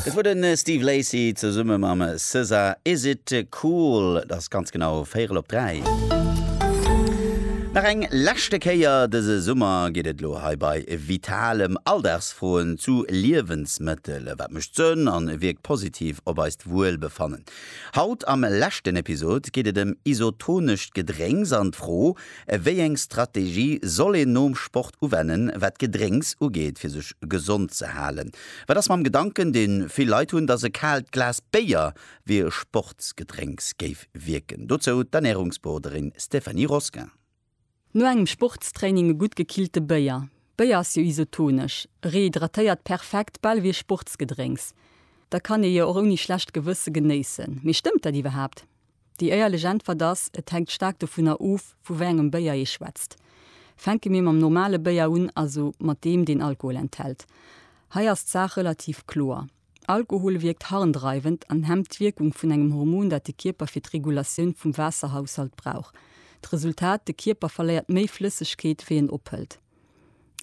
Dat wor de Steve Lacy zesumme mam SZA, Is It Cool? Et ass ganz genau véierel op dräi. Nach eng leschte Kéier dëse Summer geet et elo hei bei Vitalem Alldagsfroen zu Liewensmëttel. Wat mécht Sënn a wierkt positiv op eist Wuelbefannen? Haut am leschten Episod geet et ëm isotonescht Gedrénks an d'Fro, Wéi eng Strategie soll een nom Sport uwennen, wat d'Gedrénks ugeet, fir sech gesond ze halen? Wat ass mam Gedanken, deen vill Leit hunn, dass e kaalt Glas Béier wéi e Sportsgedrénks géif wierken? Dozou d'Ernärungsberoderin Stéphanie Rosquin. No engem Sportstraining e gutt gekillte Béier. Béier ass jo isotonesch, rehydratéiert perfekt, bal ewéi e Sportsgedrénks. Da kann ee jo och ouni schlecht Gewësse genéissen. Mee stëmmt dat iwwerhaapt? Déi éierlech Äntwert ass, et hänkt staark dovunner of, vu wéi engem Béier ee schwätzt. Fänke mir mam normale Béier un, also mat deem, deen Alkohol enthält. Hei ass d'Saach relativ kloer. Alkohol wierkt harndreiwend an hemmt d'Wierkung vun engem Hormon, dat de Kierper fir d'Regulatioun vum Waasserhaushalt brauch. D'Resultat, de Kierper verléiert méi Flëssegkeet, wéi en ophëlt.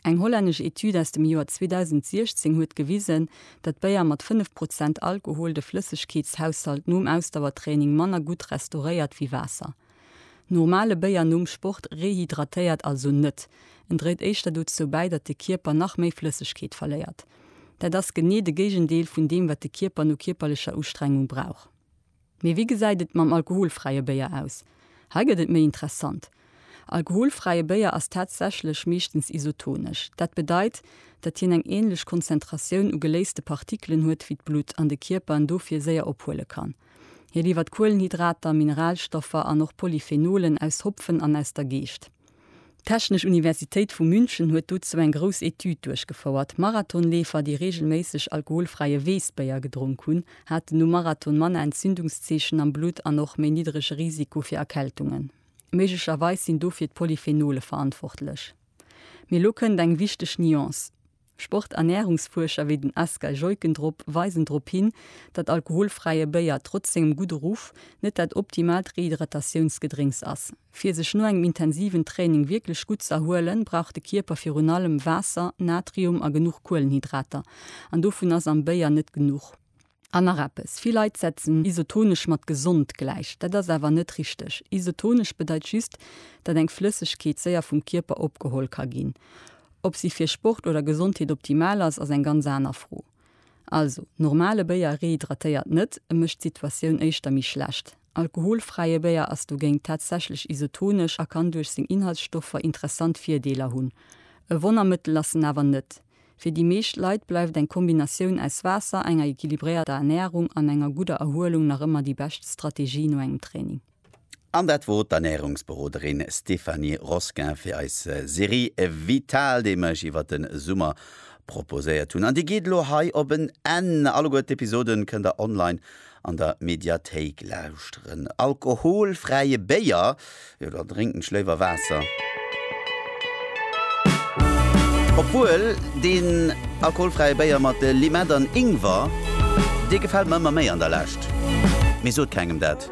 Eng hollännesch Etüd aus dem Joer 2016 huet gewisen, datt Béier mat 5 Prozent Alkohol de Flëssegkeetshaushalt nom Ausdauertraining manner gutt restauréiert wéi Waasser. Normale Béier nom Sport rehydratéiert also net, en dréit éischter dozou bäi, datt de Kierper nach méi Flëssegkeet verléiert. Dat ass genee de Géigendeel vun deem, wat de Kierper no kierperlecher Ustrengung brauch. Mee wéi gesäit et mam alkoholfräie Béier aus? Hei gëtt et méi interessant. Alkoholfräie Béier ass tatsächlech meeschtens isotonesch. Dat bedeit, datt hien eng änlech Konzentratioun u geléiste Partikelen huet wéi d'Blutt an de Kierper en dofir séier ophuele kann. Hie liwwert Kuelenhydrater, Mineralstoffer an och Polyphenolen aus Hopfen an aus der Geescht. D'Technesch Universitéit vu München huet dozou eng grouss Etüd duerchgefouert. Marathonleefer, déi reegelméisseg alkoholfräie Weessbéier gedronk hunn, haten nom Marathon manner Entzündungszeechen am Blutt an och méi niddrege Risiko fir Erkältungen. Méiglecherweis sinn dofir d'Polyphenole verantwortlech. Mee lo kënnt eng wichteg Nuance. Sporternärungsfuerscher wéi den Asger Jeuckendrop weisen drop hin, datt alkoholfräie Béier trotz sengem gudde Ruff net dat optimaalt Rehydratatiounsgedrénks ass. Fir sech no engem intensiven Training wierklech gutt z'erhuelen, brauch de Kierper virun allem Waasser, Natrium a genuch Kuelenhydrater. An dovun ass am Béier net genuch. An nach eppes, vill Leit setzen isotonesch mat gesond gläich. Dat ass awer net richteg. Isotonesch bedeit just, datt eng Flëssegkeet séier vum Kierper opgeholl ka ginn. Ob si fir Sport oder Gesondheet optimal ass, ass eng ganz aner Fro. Also, normale Béier rehydratéiert net, e mécht d'Situatioun éischter méi schlecht. Alkoholfräie Béier ass dogéint tatsächlech isotonesch a kann duerch seng Inhaltsstoffer interessant Virdeeler hunn. E Wonnermëttel ass en awer net. Fir déi meescht Leit bleift eng Kombinatioun aus Waasser, enger equilibréierter Ernärung an enger gudder Erhuelung nach ëmmer déi bescht Strategie no engem Training. An dat wot d'Ernärungsberoderin Stéphanie Rosquin fir eis Serie Vital, déi mir iech iwwert de Summer proposéiert hunn. An déi geet elo hei op en Enn. Alleguer d'Episoden kënnt der online An der Mediathéik lauschteren. Alkoholfräie Béier, jo da drénken ech léiwer Waasser. Obwuel deen alkoholfräie Béier mat Limett an Ingwer, dee gefält mer ëmmer méi an der Lescht. Mee sot kengem dat.